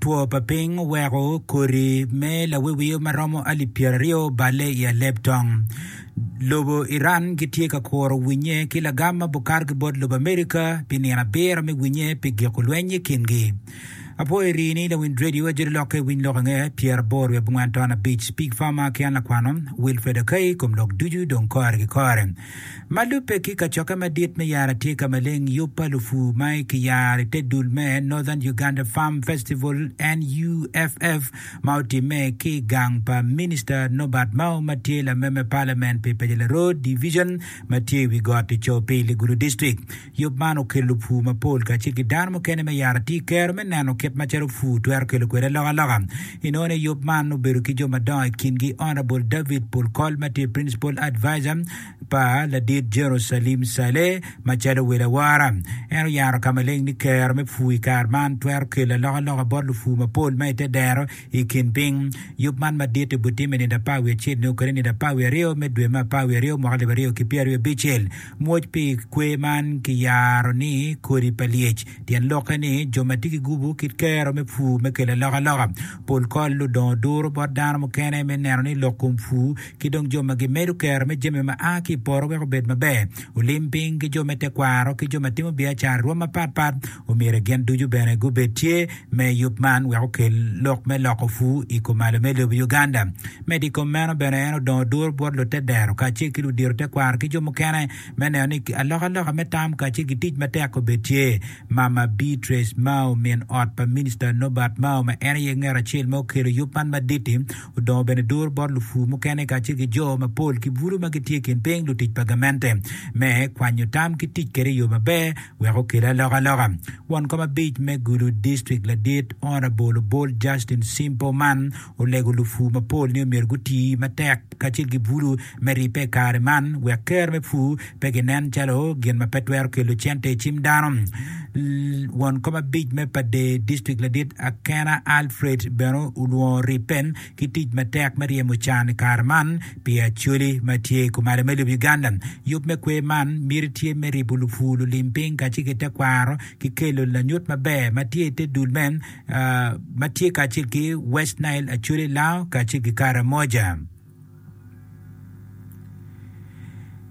Two pa piny oweko kodi me lawiwio ma romo alip pyeraryo oballe i aleb tong. Lobo Iran gitye ka kuro winye ki lagam ma bukar ki bot lobo America pi nino abiro me winye pi giko lweny i kin gi. Apwoyo eri ni lawinj radio ajoli lokke winy lok ange pyera boro wiye bungwen ton abic pig farmer ki an lakwano Wilfred Akai kom lok ducu dong kore ki kore. Ma lubbe ki kacokke madit me yaro atye ka maleng yub pa lupur ma kiyaro i te dul me Northern Uganda Farm Festival, NUFF, ma otimme ki i gang pa Minista Norbert Mao ma tye lameme Parliament pi Pejela Road Division ma tye i wi got i Coopili Gulu District. Yub man okelo lupur mapol kacel ki dano mukene me yaro atir kero me neno kit macalo pur twero kelo kwede alokaloka. I nono i yub man obedo ki jo madongo i kingi Honourable David Polkol ma tye Principal Adviser pa ladit General Salim Saleh macalo wel awora. En oyaro ka maleng ni kero me pur i kare man twero kelo alokaloka bot lupur mapol ma i te dero i kin piny. Yub man madit obitime i nino apar wiye acel nyo kede nino apar wiye aryo me dwe me apar wiye aryo mwaka alip aryo ki pyeraryo abicel. Mwoc pi kwer man kiyaro ni kodi pa lyec. Tyen lokke ni jo ma tye ki gubu kit kero me pur me kelo alokaloka. Pol kol ludongo duro bot dano mukene me neno ni lok kom pur ki dong jo ma gimedo kero me jami ma a ki i poto weko obed maber. Olim piny ki jo me tekwaro ki jo ma timo biacara i rwom mapatpat Omyero gin ducu bene gubed tye me yub man wek okel lok me loko pur i kumalo me lobo Uganda. Medo i kom meno bene en odongo duru bot lutedero kacel ki ludito tekwaro ki jo mukene me neno ni alokaloka me tam kacel ki tic matek obed tye. Mama Beatrice Mao min ot pa Minista Nobert Mao ma en aye ngat acel ma okelo yub man madit-ti odongo bene duru bot lupur mukene kacel ki jo mapol ki bulu ma gitye i kin piny lutic pa gamente me kwanyo tam ki tic kwede i yo maber Wek okel alokaloka, won kom abic me gudo distrik ladit, Honourable Obol Justin Simpo man olego lupur mapol ni omyero guti matek kacel ki bulu me ribbe i kare man wek ker me pur pe ginen calo gin ma pe twero kelo cente i cim dano. Won kom abic me pa distrik ladit Akena Alfred bene olwongo ribbe ki tic matek me ryemo can i kare man pi Acholi ma tye i kumalo me lobo Uganda. Yub me kwer man miti tye me ribo lupwu, lulim piny kacel ki tekwaro ki kelo lanyut maber ma tye i te dul me ma tye kacel ki West Nile, Acholi, Lao kacel ki Karamoja.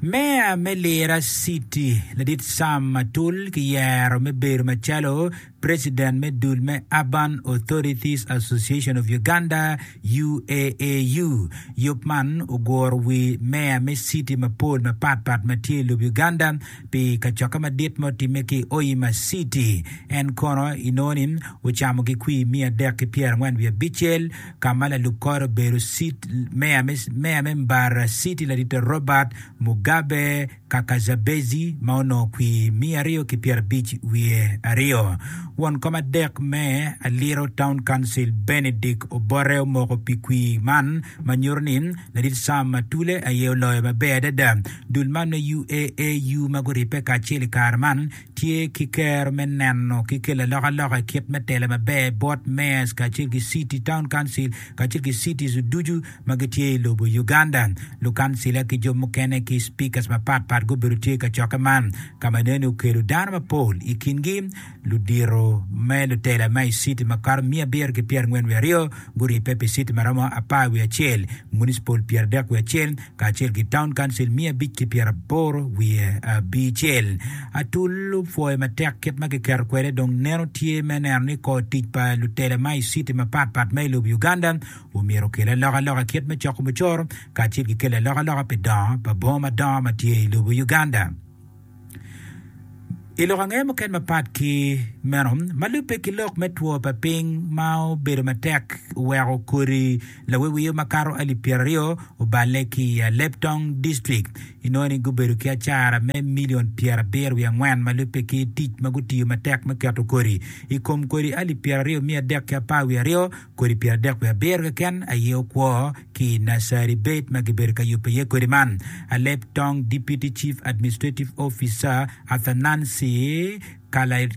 Meya me Lira City, Ladit Sam Matul ki yero me bedo macalo President me dul me Urban Authorities Association of Uganda, UAAU, yub man oguro wi meya me citi mapol mapat pat ma tye i lub Uganda pi kacokke madit ma otimme ki i Hoima Citi. En kono inongo ni ocamo ki kwir miya adek ki pyera angwen wiye abicel ka ma lalub kore obedo meya me Mbarara Citi Ladite Robert Mugabe. kaka Jabeci ma onongo kwir miya aryo ki pyerabic wiye aryo. Won kom adek me Aliro Town Council Benedict Obote omoko pi kwir man ma nyuto ni Ladit Sam Atule aye oloyo maber adada. Dul man me UAAU ma guribbe kacel i kare man tye ki kero me neno ki kelo alokaloka i kit me telo maber bot Mayors kacel ki City Town Council kacel ki Cities ducu ma gitye i lobo Uganda, lukancila ki jo mukene ki Speakers mapat pat gubedo tye i kacokke man ka ma enoni okelo dano mapol i kingi ludito me lutela ma i city makato miya abiro ki pyera angwen wiye aryo guribbe pi city maromo apar wiye acel, municipal pyera adek wiye acel kacel ki town council miya abic ki pyera aboro wiye abicel. Atul opwoyo matek kit ma kiketo kwede dong neno tye me neno ni kor tic pa lutela ma i city mapat pat ma i lobo Uganda Omyero okel alokaloka kit me coko mucoro kacel ki kelo alokaloka pi dongo pa bongo madongo ma tye i lobo Uganda. I lok ange mukene mapat ki meno, ma lubbe ki lok me two pa piny ma obedo matek oweko kodi lawiwio makato alip pyeraryo oballe ki i Aleptong District. Inongo ni gubedo ki acara me milion pyerabiro wiye angwen ma lubbe ki tic ma gutiyo matek me keto kodi. I kom kodi alip pyeraryo miya adek ki apar wiye aryo, Kodi pyeradek wiye abiro keken aye okwo ki i Nursery Bed ma gibedo ka yubo iye kodi man, a leb tong Deputy Chief Administrative Officer Athanansi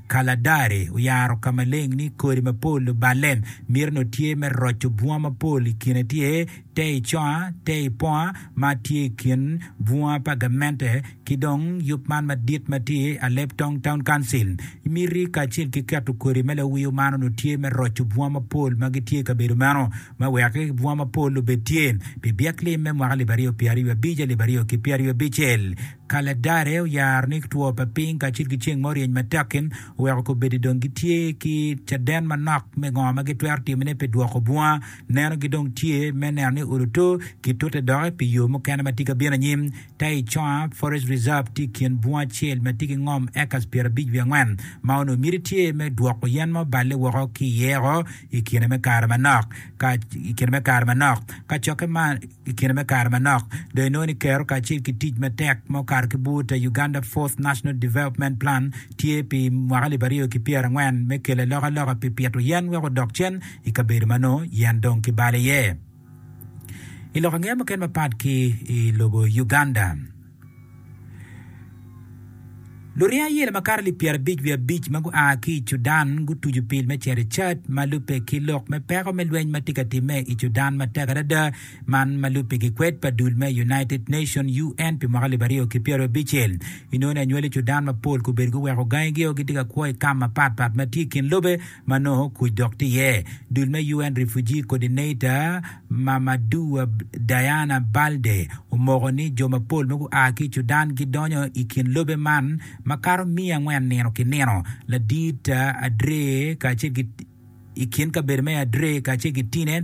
Kaladari oyaro ka maleng ni kodi mapol luballe mito nongo tye me roco bunga mapol i kine tye te i conga, te i ponga ma tye i kin bunga pa gamente ki dong yub man madit ma tye Alep Tong Town Council. Miti kacel ki keto kodi me lawiyo man onongo tye me roco bunga mapol ma gitye i kabedo meno me wek bunga mapol obed tye pi byek lim me mwaka alip aryo pyera aryo abic alip aryo ki pyera aryo abicel. Ka Ladare oyaro ni two pa piny kacel ki ceng ma oryeny matek-ki oweko kobeddi dong gitye ki caden manok me ngo ma gitwero timone pi dwoko bunga Nenogi dong tye me neno ni ot otur kitute doki pi yo mukene ma tye ka bino anyim. Taichung Forest Reserve tye i kin bunga acel ma tye ki ngom acres pyerabic wiye angwen ma onongo miti tye me dwoko yen ma oballe woko ki iye oko i kine me kare manok. Ka i kine me kare manok, ka cokke man i kine me kare manok, dong inongo ni Kero kacel ki tic matek ma okato ki bur ta Uganda Fourth National Development Plan tye pi mwaka alip aryo ki pyerangwen me kelo alokaloka pi pito yen wek odok cen I kabedo ma nongo yen dong kibalo iye i lok angeya muken mapat ki i lobo Uganda, luring ayela makato alip pyerabic wiye abic ma gua ki i Cudan gutucu pil me cito i Chad ma lubbe ki lok me peko me lweny ma tye ka timme i Cudan matek adada. Man ma lubbe gikwed pa dul me United Nations, UN, pi mwaka alip aryo ki pyeraryo abicel. Inongo ni anywali Cudan mapol kobedo guweko gangigio gitye ka kwo i kam mapatpat ma tye i kin lobe. ma nongo kuc dok tye iye. Dul me UN Refugee Coordinator, Mamadou Diana Baldé, omoko ni jo mapol ma gua ki i Cudan gidonyo i kin lobe man makato miya angwen nino ki nino, ladit Adre kacel ki i kin kabedo me Adre kacel ki Tine,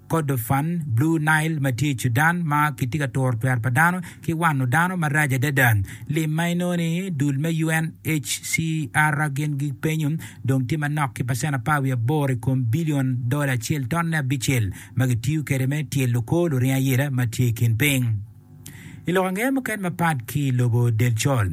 Kordofan, Blue Nile, ma tye i Cudan, ma kitye ka turo twer pa dano ki wano dano marac adada. Lim ma inongo-ni, dul me UNHCR gin gipenyo dong tye manok ki pacent apar wiye aboro i kom bilion dola acel tonne abicel ma gitiyo kwede me tyelo kor luring ayela ma tye i kin piny. I lok angeya muken mapat ki i lobo Delcol,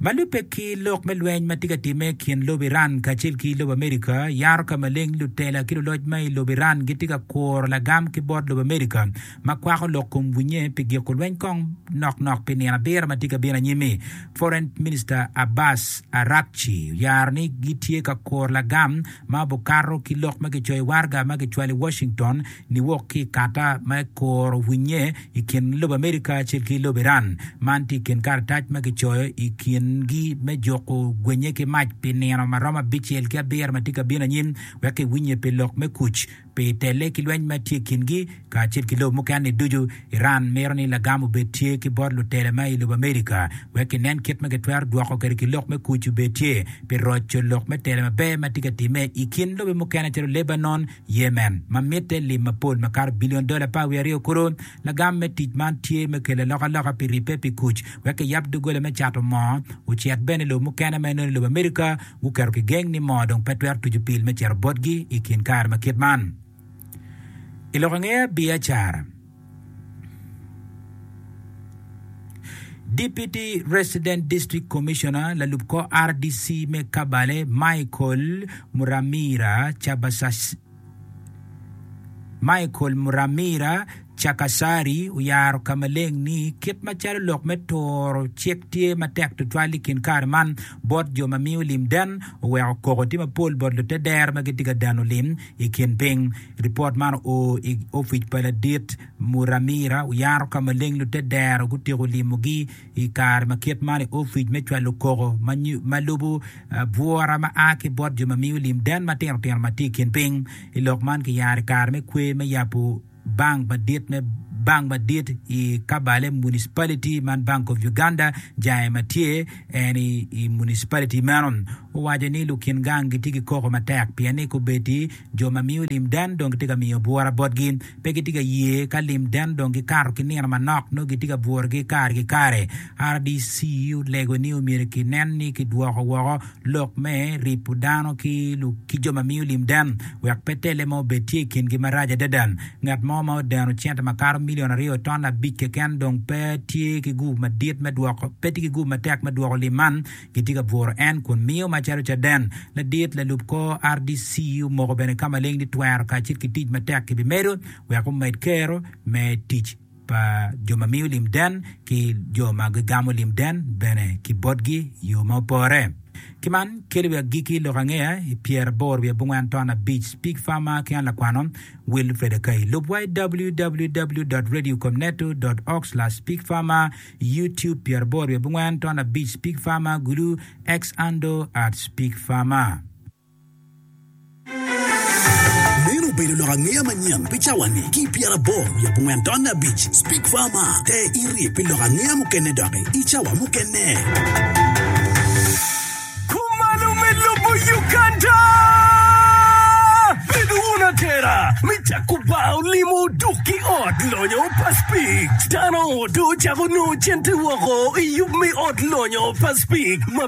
ma lubbe ki lok me lweny ma tye ka timme i kin lobo Iran kacel ki lobo Amerika, yaro ka maleng lutela ki luloc ma i lobo Iran gitye ka kuro lagam ki bot lobo Amerika ma kwako lok kom winnye pi giko lweny kong nok nok pi nino abiro ma tye ka bino anyim-mi. Foreign Minister Abbas Araghchi oyaro ni gitye ka kuro lagam ma obikato ki lok ma kicoyo i waraga ma kicwalo i Washington niwok ki i kata ma ekuro winnye i kin lobo Amerika acel ki lobo Iran. Man tye i kin karatac ma kicoyo i kingi me juko gwenye ki mac pi nino ma romo abicel ki abiro ma tye ka bino anyim wek kiwinnye pi lok me kuc pi tele ki lweny ma tye i kingi kacel ki lobo mukene-ni ducu. Iran mito ni lagam obed tye ki bot lutela ma i lobo Amerika wek kinen kit ma kitwero dwoko kwede ki lok me kuc obed tye pi roco lok me tela maber ma tye ka timme i kin lobe mukene calo Lebanon, Yemen, ma mitte lim mapol makato bilion dola aparwiye aryo kuro, lagam me tic man tye me kelo alokaloka pi ribbe pi kuc wek kiyab doggola me cato moo ocit bene i lobo mukene ma inongo lobo America guketo kigeng ni moo dong pe twero tuco pil me cito botgi i kin kare ma kit man. I lokangeya biacara. Deputy Resident District Commissioner, lalub kor RDC me Kabale, Michael Muramira Michael Muramira Chakasari oyaro ka maleng ni kit macalo lok me turo cik tye matek tutwal i kin kare man bot jo ma miyo lim den oweko koko tye mapol bot lute dero ma gitye ka dano lim I kin piny, ripot man oo i ofic pa Ladit Muramira Uyaro ka ma leng lutedero gutyeko limogi i kare ma kit man i ofic me cwalo koko ma lubo bwura ma a ki bot jo ma miyo lim den matino tino ma tye i kin piny. I lok man kiyaro i kare me kwe me yabo. Bank madit me bank madit i Kabale Municipality man Bank of Uganda jange ma tye en i municipality meno owaco ni lukin gang gitye ki koko matek pien ni kubeddi jo ma miyo limden dong gitye ka miyo bwura botgi pe gitye ka ye ka limden dong gikato ki nino manok nongo gitye ka bwurogi kare ki kare. RDC olego ni myero kinen ni kidwoko woko lok me ripo dano ki jo ma miyo lim den wek pe telle mo obed tye i kingi marac adada. Ngat mo ma odeno cente ma kato milion aryo ton abic keken dong pe tye ki gupu madit me dwoko, pe tye ki gupu matek me dwoko lim man. Gitye ka bworo en kun miyo macalo caden. Ladit lalub kor RDC omoko bene ka maleng ni twero kacel ki tic matek kibimedo wek omed kero me tic. pa jo ma miyo lim den ki jo ma gigamo lim den bene ki botgi i yo ma opore. Ki man, keli wi agikki lok angeya i pyeraboro wi abongwen ton abic. Pig Farmer ki an lakwano, Wilfred Akai. Lub wa i www.radiocomneto.org/pigfarmer, YouTube pyeraboro wi abongwen ton abic, Pig Farmer, Gulu, Xando at Pig Farmer. Meno obedo lok angeya manyen pi cawani ki pyera aboro wiye abongwen taun abic. Speak Farmer, te iri pi lok angeya mukene doki i cawa mukene. Kumalo me lobo Uganda! Bedo wun atera me cako bar olimo duk ki ot lonyo pa Speak. Dano dong ocako nongo cente woko i yub me ot lonyo pa Speak ma